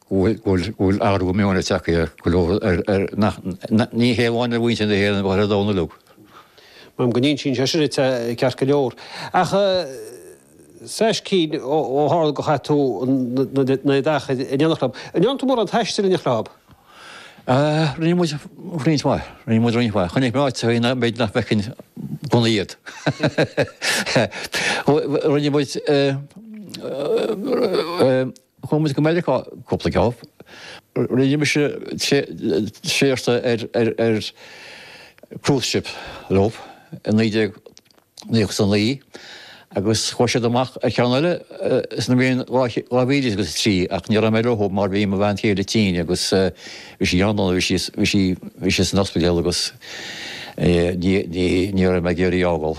go bhfuil athrú meoin ag teacht ar go leor, ar nach, ní hé amháin ar mhuintir na hÉireann, ach ar an domhan uilig. Má insím go n-insíonn sé sin ceart go leor. Ach sa Shaskeen, ó tharla gur chaith tú na daichead ina chlab, an ndearna tú mórán taistil ina chlab? Rinne muid roinnt mhaith, rinne muid roinnt mhaith. Chonaic mé áiteacha ina mbeidh, nach bhfeicfinn murach iad. Rinne muid, Chuaigh muid go Meiriceá cúpla geábh. Rinne mise tréimhse ar cruise ship leo i 1999 agus chuaigh siad amach ar cheann eile sa mbliain 2000 agus 2003 ach ní raibh mé leo mar bhí mo bhean chéile tinn agus bhí sí i Londain, bhí sí san ospidéal agus ní raibh mé ag iarraidh í a fhágáil.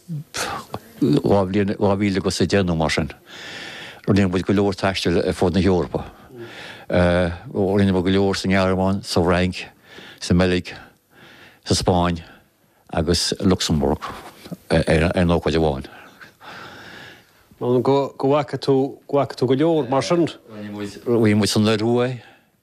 dhá mhíle agus a deich nó mar sin. Rinne muid go leor taistil ar fud na hEorpa. Rinne muid go leor sa nGearmáin, sa bhFrainc, sa mBeilg, sa Spáinn agus i Lucsamburg ar aon ócáid amháin. Go bhfaca tú go leor mar sin! Bhí muid san Noruaidh,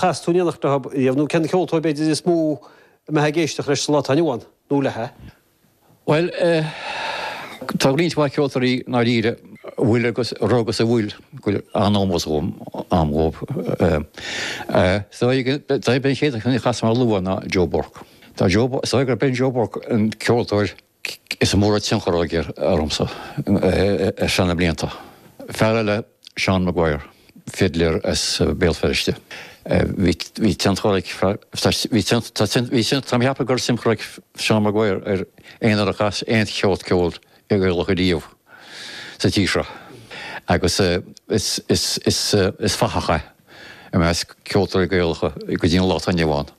chas tú in éineacht leo? nó cén cheoltóir b'fhéidir is mó a mbeifeá ag éisteacht leis sa lá atá inniu ann? nó le? Bhuel, tá roinnt mhaith ceoltóirí ndáiríre a bhfuil agus a raibh agus a bhfuil an-ómós am, am dhóibh. Is dóigh gurb é an chéad cheann a chaithfeas mé a lua ná Joe Burke. Tá Joe, is dóigh gurb é Joe Burke an ceoltóir is mó a raibh tionchar aige ormsa ar feadh na mblianta, fear eile, Seán Maguire, fidléir as Béal Feirste. Bhí tionchar, tá mé ag ceapadh go raibh tionchar ag Seán Maguire ar aon fhear a chas aon cheol ceoil Ghaelach ariamh sa tír seo agus is fathach é i measc ceoltóirí Gaelacha go dtí an lá atá inniu ann.